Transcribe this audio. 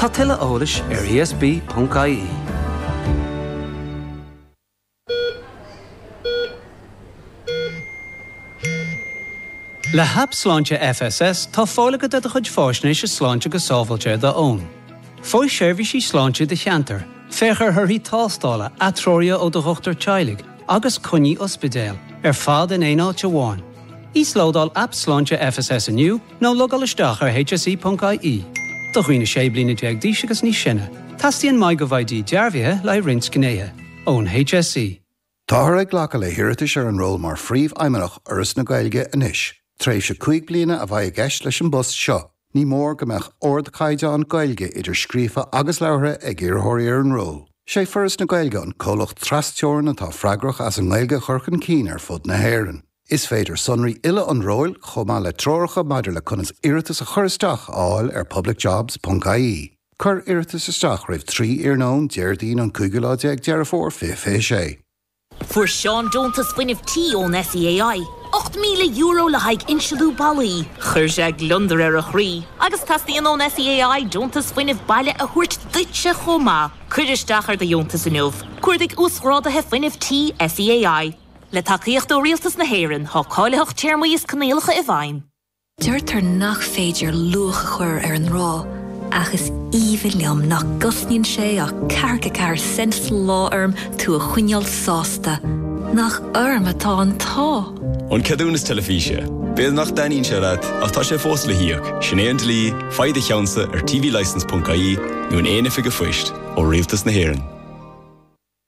Tá tuilleadh eolais ar ESB.ie. Le hAip Sláinte FSS tá fáil agat ar do chuid fáisnéise sláinte go sábháilte ar do fhón. Faigh seirbhísí sláinte i do cheantar, féach ar thorthaí tástála, atreoruithe ó do dhochtúir teaghlaigh agus coinní ospidéil, ar fad in aon áit amháin. Íoslódáil Aip Sláinte FSS inniu. Nó logáil isteach ar hse.ie. Do dhaoine 16 bliana d'aois agus níos sine, teastaíonn MyGovID dearbhaithe le haghaidh roinnt gnéithe, ón HSE. Táthar ag glacadh le hiarratais ar an ról mar Phríomhfheidhmeannach Fhoras na Gaeilge anois. Tréimhse cúig bliana a bheidh i gceist leis an bpost seo. Ní mór go mbeadh ardchaighdeán Gaeilge, idir scríofa agus labhartha, ag iarrthóirí ar an ról. Is é Foras na Gaeilge an comhlacht tras-teorann atá freagrach as an nGaeilge a chur chun cinn ar fud na hÉireann. Is féidir sonraí uile an róil chomh maith le treoracha maidir le conas iarratas a chur isteach a fháil ar publicjobs.ie. Cuir iarratas isteach roimh 3 iarnóin Déardaoin an cúigiú lá déag Deireadh Fómhair 2026. Fuair Seán deontas fuinnimh tí ón SEAI, €8,000 le haghaidh insealú ballaí. Chuir sé gliondar ar a chroí agus teastaíonn ón SEAI deontas fuinnimh baile a thabhairt duitse chomh maith. Cuir isteach ar do dheontas inniu. Cuardaigh Uasghráduithe Fuinnimh Tí SEAI. Le tacaíocht ó Rialtas na hÉireann, tá cáilitheacht téarmaí is coinníollacha i bhfeidhm. Deirtear nach féidir luach a chur ar an ngrá, ach is aoibhinn liom nach gcosnaíonn sé ach ceathracha ceathair cent sa lá orm tú a choinneáil sásta. Nach orm atá an t-ádh! An ceadúnas teilifíse. B'fhéidir nach dtaitníonn sé leat, ach tá sé fós le híoc, sin é an dlí, faigh do cheannsa ar tvlicence.ie nó in aon oifig an phoist ó Rialtas na hÉireann.